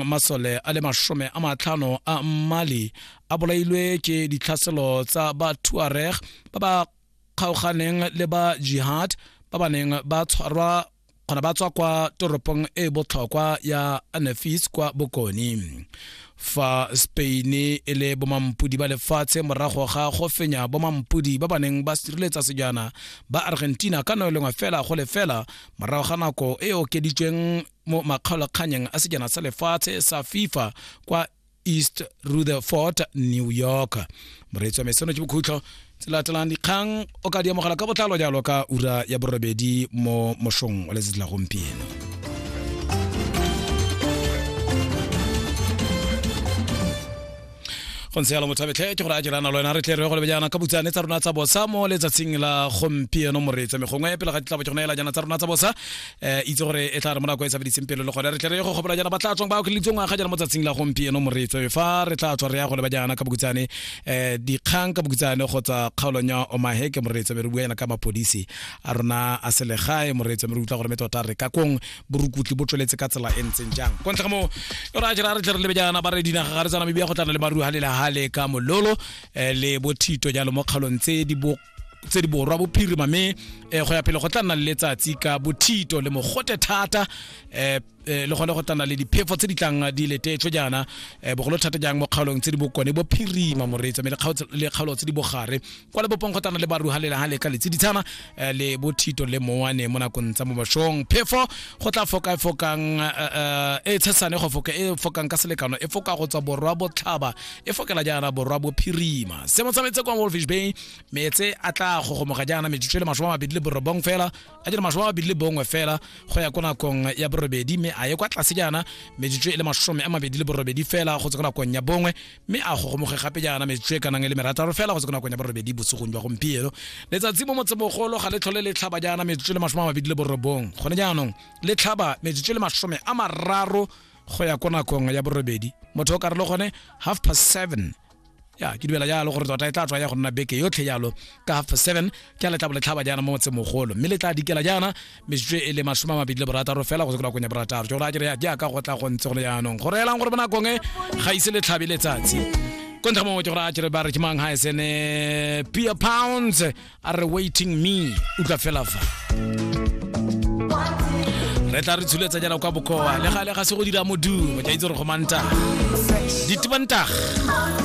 masole a le masome a matlhano a mmali a bolailwe ke ditlhaselo tsa ba tuareg ba ba kgaoganeng le ba jihad ba ba neng ba tshwarwa kgona ba tswa kwa toropong e e botlhokwa ya anafis kwa bokone fa spain e le bomampodi ba lefatshe morago ga go fenya bomampodi ba ba neng ba sireletsa sejana ba argentina ka no e lengwe fela go lefela morago ga nako e okeditsweng mo makgaolakganyeng a sejana sa lefatshe sa fifa kwa east rutherford new york moreetsi wa meseno ke bokhutlho tse latelang dikgang o ka di amogela ka botlalo jalo ka ura ya borobedi mo mošong wa letsatsi la gompieno go ntse yalo mothabetlhe ke gore a dirana lo wena re tle re go lebe jaana ka butsane tsa rona tsa bosa mo letsatsing la gompieno moreetsa me gongwe pele ga ditlabo ke gona ela jaana tsa rona tsa bosa um itse gore e tla re mo nako e tsabeditseng pelo le gone re tle re go gopola jaana ba tla tswang ba okeletswe ngwaga jaana mo tsatsing la gompieno moreetsa me fa re tla tswa re ya go leba jaana ka bokutsane um dikgang ka bokutsane kgotsa kgaolong ya omaheke moreetsa me re bua jaana ka mapodisi a rona a selegae moreetsa me re utlwa gore me tota re ka kong borukutli bo tsweletse ka tsela e ntseng jang kwa ntle ga moo e ra jera re tle re lebe jaana ba re dinaga ga re tsana mebia go tlana le maru ha le la hale ka mololo eh, le bothito jalo mo kgalong tse di bo tse di borwa bophirima mme eh, go ya pele go tla nna le letsatsi ka bothito le mogote thata eh, eh, le gone go tla nna le diphefo tse di tlang di letetswe jaana eh, bogolo thata jang mo kgaolong tse di bokone bophirima moreetsa mme le kgaolo- le kgaolo tse di bogare kwa le bopongkgotana le baruhalela ha le ka letsiditshana eh, le bothito le mowane mo nakong tsa mo bashong phefo go tla foka e fokang eh, eh, e tshesane go foka e fokang ka selekano e foka go tswa borwa botlhaba e fokela jaana borwa bophirima se mo tsametse kwa wolfish bay metse a tla gogomoga jaana metsotso e le masome a mabedi le borobong fela a jele masome a mabedi le bongwe fela go ya ko nakong ya borobedi mme a ye kwa tlase jaana metsotso e le masome a mabedi le borobedi fela go tswa ko nakong ya bongwe mme a gogomoge gape jaana metsotso e kanang e le merataro fela go se ko nakong ya borobedi bosegong jwa gompieno letsatsi mo motsebogolo ga le tlhole le tlhaba jaana metsotso le masome a mabedi le borobong gone jaanong le tlhaba metsotso le masome a mararo go ya ko nakong ya borobedi motho o ka re le gone half past seven ya ke dumela jalo gore tota e tla tswa ya go nna beke yotlhe jalo ka half past seven ke le tla bo le tlhaba jaana mo motsemogolo mme le tla dikela jaana metsotso e le masome a mabedi le borataro fela go se konakong ya borataro ke gore a kere jaaka go tla go ntse go le jaanong go reelang gore bonakong e ga ise le tlhabe letsatsi ko ntlha mongwe ke gore a kere ba re ke mang ga e sene pia pounds a re waiting me utlwa fela fa re tla re tshuletsa jana kwa bokoa le gale ga se go dira modumo ke a itse gore go mantaga ditibantaga